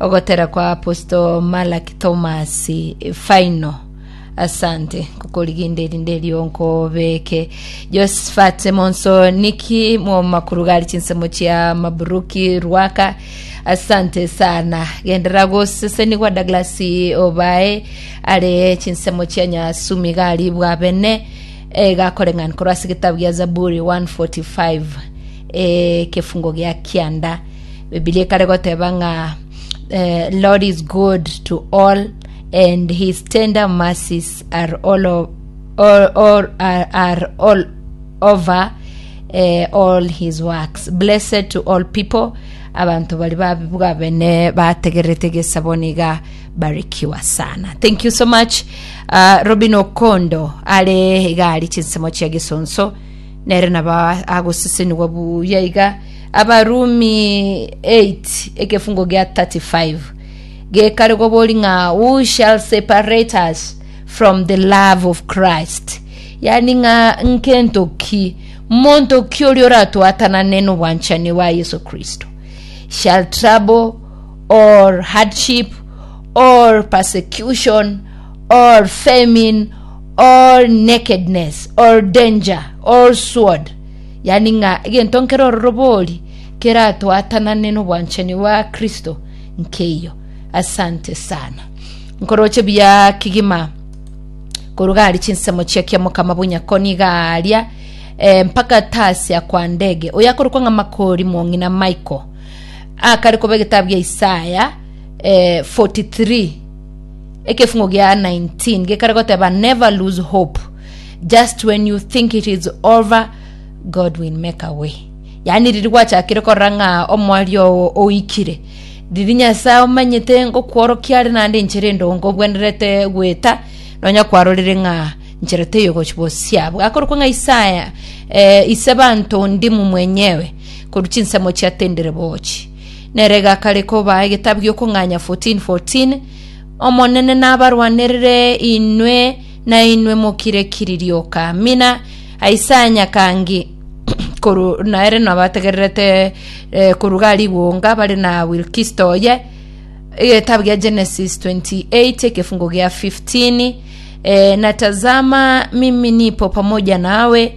Ogotera kwa Apostle Malaki Thomas final. Asante kukoriginde erinde erio nkobeke. Josephat Monso Niki momakurugari chinsemo chia Maburuki Rwaka. Asante sana. Gendera gosesenigwa Douglas Obae are chinsemo chia Nyasumi gari bwabene egakore ng'ani korwa ase egetabu gia Zaburi 145. ekefungo gia kianda bibilia ekare goteba ng'a eh, lord is good to all and his tender mercies are all, o- all, all, are, are all over eh, all his works blessed to all people abantu bari babibwa bene bategerete gesaboniga barikiwa sana thank you so much uh, robin okondo are igari chinsemo chia gisonso Nere nabo agosesenigwa buya iga Abarumi 8 ekefungo gia 35 gekare gobori ng'a who shall separate us from the love of Christ yani ng'a nkento ki monto ki oria oratwatanane nobwanchani bwa Yesu Kristo shall trouble or hardship or persecution or famine all nakedness, all danger, all sword, yani ng'a egento nkere ororobori keratwatanane nobwanchani bwa Kristo nkeiyo. Asante sana. Nkoroche buya kigima koru gari chinsemo chia kiamokama bonyako niga aria eh, mpaka tasia kwa ndege oyo akorokwa ng'a makori mwong'ina Michael akare koba egetabu gia Isaya eh, 43 ekefungo gia 19 gekare goteba never lose hope just when you think it is over god will make a way yaani riri gwachakire korora ng'a omwari oo oikire riri nyasaye omanyete ngokworokia are naende enchera endongo obwenerete gweta nonya kwarorire ng'a nchera teyogochi bosia bwakorokwa ng'a isaya eh, ise banto ndimu mwenyewe koru chinsemo chiatendire bochi Nere egakare kobaa egetabu gi'okong'anya 14 14 Omonene nabarwanerere inwe, na inwe mokire kiririo kamina. Isaya nyakangi koru naere nabategererete eh, koru gariguonga bare na wilkisto oye egetabu gia genesis 28 ekefungo gia 15 eh, natazama mimi nipo pamoja nawe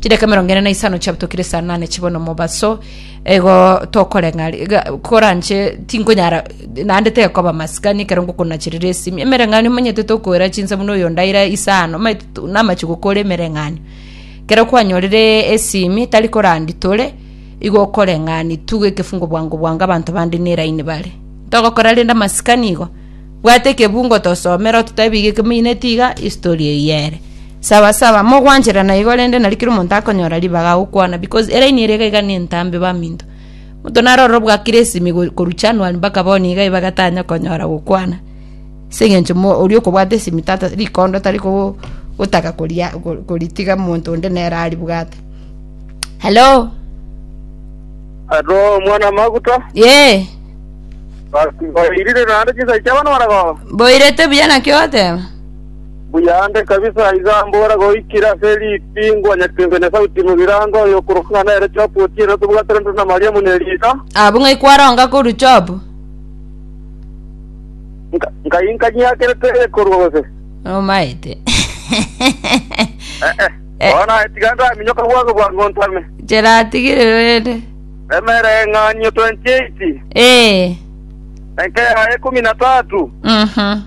Chidaka emerongo ene na isano chiabutokire saa nane chibo nomobaso igo tokoreng'ari ga- koranche tinkonyara naende tekoba masikani ekero ngokonachirera esimi emereng'anio omanyete tokoera chinsa buna oyo ondaira isano omanyete tu- namache gokora emereng'anio ekero kwanyorire esimi tari korandi tore igo okoreng'ani tu ekefungo bwango bwango abanto bande neraini bare ntogokora rende amasikani igo. Bwata ekebungo tosome ero totebi iga ekemiineti iga history eyio ere. Sawa sawa mogwancherana igo rende nari kera omonto akonyora ribaga agokwana because eraini ere iga iga nentambe baminto. Omonto naro ororo bwakire esimi go- korwa January mpaka bono iga ibaga tanya konyora gokwana. Ase eng'encho mo oria okobwata esimi tata rikondo tari koo gotaka koria ko- koritiga omonto onde nere aribwate. Hello? Hello mwana maguta. Yee. Basi mboirire naende chinsa chiabo noboragoba. Mboirete buya naki ogoteba? Buyande kabisa iga mbora goikire ase ritingwa nyatengwe na sauti mogirango oyo okorokwa ng'a nere Job otiere otobwatire nduru na Mariamu ne Lisa. Abwo ng'a ikwaronga korwa Jobu. Nka- Nkai nkanyiakerete ekorwa gose. Nomaete. Eh, eh. Eh. Bono naye tiga ndaminyoka bwango bwango ntame. Cheratigire rende. Emereng'anio 28 Ee. enka ya ekumi na tatu Mhm.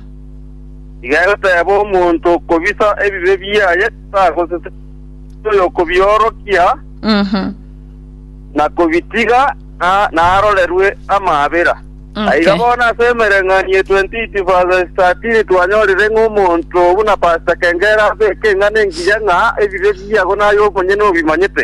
iga egoteba omonto okobisa ebibe biaye tagosesa oyokobiorokia Mhm. na kobitiga na- narorerwe amaabera Okay. iga bono ase emereng'anio 28 verse 13 twanyorire ng'a omonto buna pastor kengera abeke eng'ana engiya ng'a ebibe biago naye omonyene obimanyete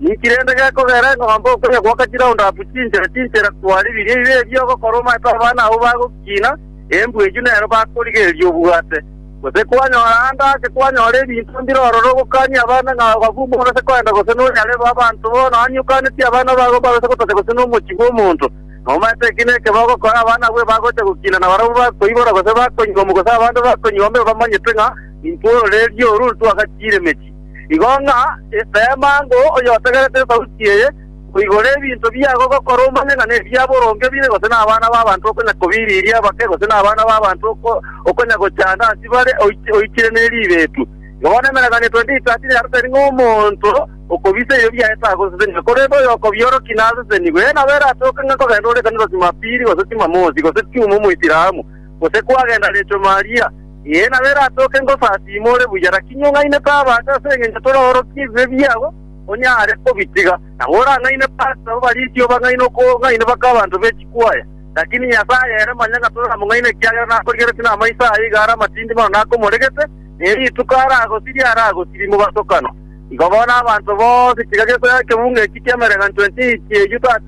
Ninki rende gekogera eng'ombe okoria gwoka chiraunda apu chinchera chinchera twari biria ibe ebi ogokora omanyete abana abwo bagokina, embu eyio nero bakorigereria obwate? Gose kwanyora ande ake kwanyora ebinto mbire ororo ogokanie abana ng'a abafumbo barase kogenda gose nonyarebe abanto bono onye okanetie abana babo mbarase gotacha gose nomochie bw'omonto, nomanyete eki nekebe ogokora abana abwo ebagocha gokina na barabwo bakoibora gose bakonywa omo gose abande bakonywa omo ebamanyete ng'a intwe ororeeria oru intwe agachiire emechie. Igo ng'a rema ango oyotegerete esauti eye, koigora ebinto biago ogokora omanye ng'a nebia boronge bire, gose nabana b'abanto okonya kobiriria bake, gose nabana b'abanto okonya gochanda ase bare oichire ne ribeetu. Igo bono emereng'anio 28:30 niaro tari ng'a omonto okobisa ebio biaye tagosesenigwe, korende oyokobiorokia nasesenigwe. Eena, nabo eratoke ng'a nkogenda ore ekanisa Chimapili, gose Chimamosi, gose Chuma Omoisilamu? gose kwagenda Recho Maria? Ee, nabere atoke ngosasiima ore buya, lakini ong'aine taba ase ase engencho toraorokia ebibe biago, onyare kobitiga. Nabo orang'aine Pastor, ababarisi obang'aine okong'aina baka abanto be chikwaya. Lakini Nyasae ere manya ng'a toramong'aina ekiagera nakorigeretie namaiso aye iga are amatindi mono nakomoregete, na eri rituko aragosirie aragosirie mobatokano. Igo bono abanto bonsi tiga gesoera ekebunga eki ki'emereganchwa 28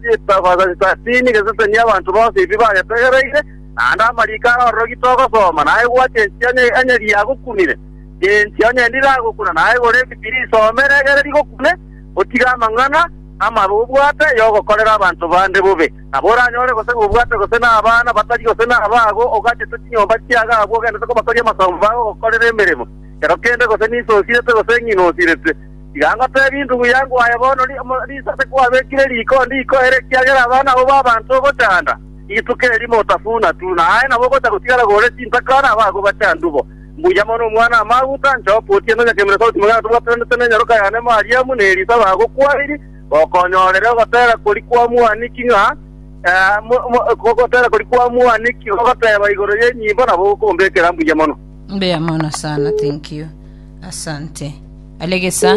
gese 30 gesesenie abanto bonsi ebi bagetegereire, naende amariko arororogi togosoma, naye bwati enchera enye riagokunire, na enchera enye ndiragokuna, naye igoro ebibi risome ere egere rigokune, otige amang'ana amabe obwate y'ogokorera abanto bande bobe, nabo oranyore gose nobwate gose nabana batari gose nabago, ogachete chinyomba chiago abwo ogendete kobakoria amasomo bagogokorera emeremo, kero kende gose ninse osirete gose ng'ina osirete. Tiga ngotebie indubu yangu aye bono, Ri- mo- risabe kwabekire riko ndikoere, ekiagera abana abwo b'abanto ogochanda. Rituko eri motafuna tu, na aye nabo ogocha gotigara gore chintaka na abago bachandu bo. Mbuya mono omwana amaguta, inche oka otiende onyakemire sauti magana tobwatananete ne enyaroka yane Mariamu, na Elisa bagokwairie, gokonyorere ogotera kori kwa mwaniki ng'a ogotera kori kwa mwaniki gogoteba igoro y'enyimbo nabo gokombekera mbuya mono. Mbuya mono sana, thank you. Asante. Alegesa.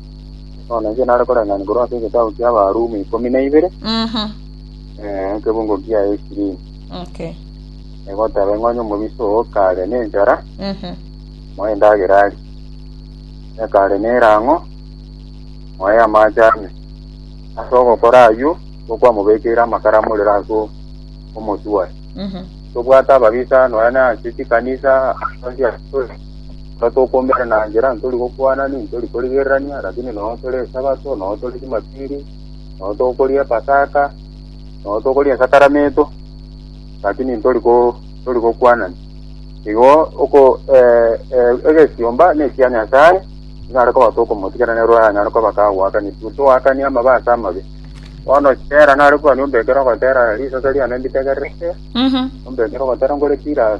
Bono inche nare koreng'ania korwa ase egetabu ki'Abarumi ikomi na ibere, Mhm. eh, ekebungo kia esirini. Okay. Egoteba ng'a onye omobisa oo kare nenchara, Mhm. moe endagera arie. Ekare nerang'o, moe amache ame. Ase ogokora ayio, tokwamobekeire amakara amorero ase o- omotwe oye. Mhm. Tobwate ababisa nonya na ase chikanisa, ase onsi ase- Ekero tokomerana enchera ntori gokwana, nintori korigererania, lakini nonya tore Esabato, nonya tore Jumapili, nonya tokoria Epasaka, nonya tokoria Esakaramentu, lakini ntori ko ntori gokwanani. Igo oko eh, eh, egesiomba na ekia Nyasaye, nyare koba tokomotigera nero anyare koba kagoakania, toakanie amabe ase amabe. Bono tera nare kwania ombe ekero ogotera risase riane nditegererete, Mhm. ombe ekero ogotera nkore pira